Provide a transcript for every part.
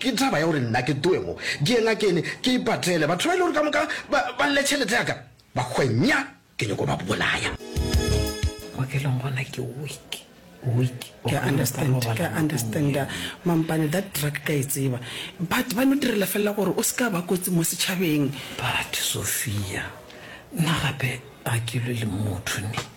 Ke taba ya gore nna ke ttoe mo, ke ye ngakene, ke ipatele. Batho ba e le gore ka moka ba, ba lle tšhelete ya ka, ba hwenya, ke nyoko ba bolaya. Bookelong gona ke weak, weak. Ke a understand, ke a understanda. Mampane, that drug ke a e tseba. But ba no direla felela gore o se ka ba kotsi mo setšhabeng. But Sophia, nna gape ga ke lwe le motho ne.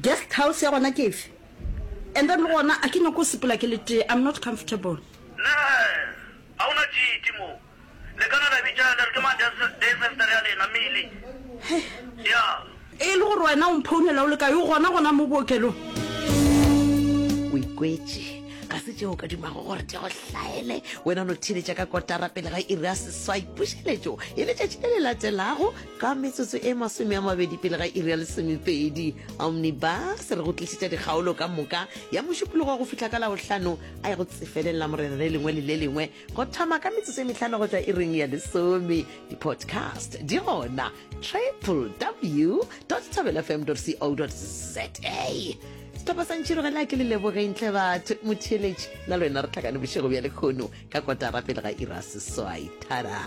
Guest house ya gona ke efe? And then le gona a ke nyako sepela ke le tee, I'm not comfortable. Nurse, Ga o na tšiti mo. Le ka na la bitša le re ke mang day sister ya lena, Milly. Hei. Ya. E le gore wena o mphounela o le kae, o gona gona mo bookelong? O ikwetše, ga se tšeo o ka dumago gore di go hlaele. Wena o no theeletša ka kotara pele ga iri ya seswai. Pušeletšo e letšatši le le latelago. Ka metsotso e masome a mabedi pele ga iri ya lesomepedi, Omnibus re go tlišetša dikgaolo ka moka ya mošupologo go fihla ka Labohlano a e go tsefelelela morena le lengwe le le lengwe go thoma ka metsotso e mehlano go tšwa iring ya lesome. Di-podcast di gona www tabelfm co za. Sehlopha sa ntšhirogela ke le lebogeng tle batho motheeletši na le wena re tlhakane bošego bja lekgono ka kotara pele ga iri a seswai. Tada!